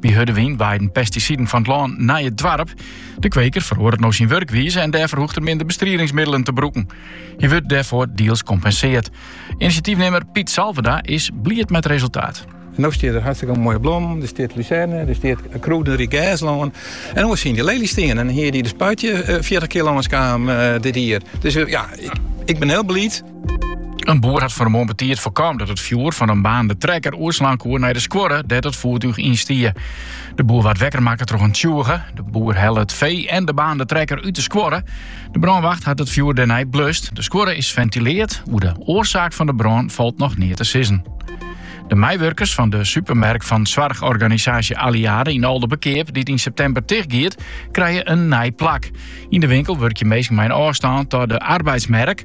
By hurde wyn waaiden pestisiden fan it lân nei it doarp. De kweker feroaret no syn wurkwize en dêrfoar hoecht er minder bestridingsmiddelen te brûken. Hy wurdt dêrfoar diels kompenseard. Inisjatyfnimmer Piet Salverda is bliid met it resultaat. En no stiet der hartstikke moaie blommen. Der stiet luzerne, der stiet krûderyk gerslân. En oars hiene der leeljes stien. En hie de spuit hjir 40 eh, kear lâns kaam eh, dit jier. Dus eh, ja, ik, ik bin hiel bliid. In boer hat fan 'e moarn betiid foarkaam dat it fjoer fan in baarnende trekker oerslaan koe nei de skuorre dêr't it foertúch yn stie. De boer waard wekker makke troch in tsjûge. De boer helle it fee en de baarnende trekker út de skuorre. De brânwacht hat it fjoer dêrnei blust. De skuorre is fentileard. Oer de oarsaak fan de brân falt noch neat te sizzen. De meiwurkers fan de supermerk fan soarchorganisaasje Alliade yn Aldeberkeap, dy't yn septimber tichtgiet, krije in nij plak. Yn de winkel wurkje minsken mei in ôfstân ta de arbeidsmerk.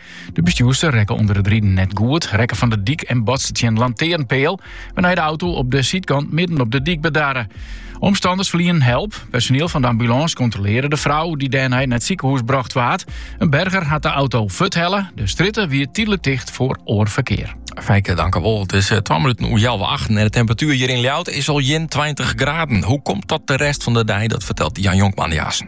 De bestjoerster rekke ûnder it riden net goed, rekke fan de dyk en botste tsjin in lantearnpeal, wêrnei de auto op de sydkant midden op de dyk bedarre. Omstanners ferlienden help. Personiel fan de ambulâns kontrolearre de frou, dy't dêrnei nei it sikehûs brocht waard. In berger hat de auto fuorthelle. De strjitte wie tydlik ticht foar oar ferkear. Fijke, tankewol. It is 2 eh, minuten oer healwei achten en de temperatuer hjir yn Ljouwert is al 21 graden. Hoe komt dat de rest fan de dei? Dat fertelt Jan Jonkman dy aansen.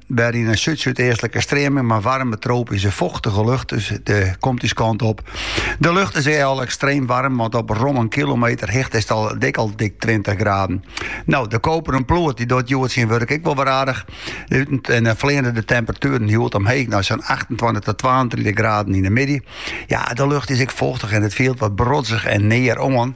Wer yn in súd-súdeastlike streaming mei waarme tropyske fochtige lucht dy komt ús kant op. De lucht is ek al ekstreem waarm, want op rom in kilometer hichte is it al dik al dik 20 graden. No, de koperen ploert die doet hjoed syn wurk ek wol wer aardich. Uteinlik fleane de temperatueren hjoed omheech nei sa'n 28 tot 32 graden yn 'e middei. Ja, de lucht is ek fochtich en it fielt wat brodzich en near oan.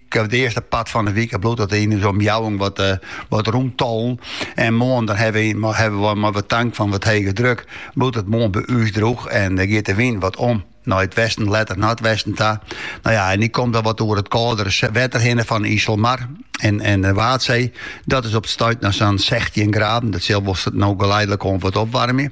Op it earste part fan de wike bliuwt it yn ús omjouwing wat rûntollen. En moarn dan hawwe wy mei wat tank fan wat hege druk bliuwt it moarn by ús drûch en dan giet de wyn wat om nei it westen, letter noardwesten ta. No ja, en dy komt dan wat oer it kâldere wetter hinne fan de Iselmar en de Waadsee. Dat is op it stuit noch sa'n sechstjin graden. Dat sil wol no geleidelik oan wat opwarmje.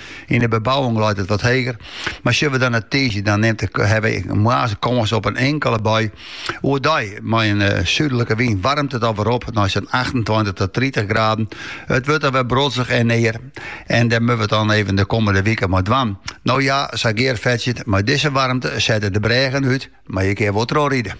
Yn 'e bebouwing leit it wat heger, mar sjoch we dan nei tiisdei, dan nimt de hawwe wy moarns kâns op in inkele bui. Oerdei, mei in súdlike wyn, waarmt it alwer op nei sa'n achtentweintich ta tritich graden. It wurdt alwer brodzich en near en dêr moatte we it dan even de kommende wike mei dwaan. No ja, sa Geart fertsjut, mei dizze waarmte sette de brêgen út, mar je kinne wol troch ride.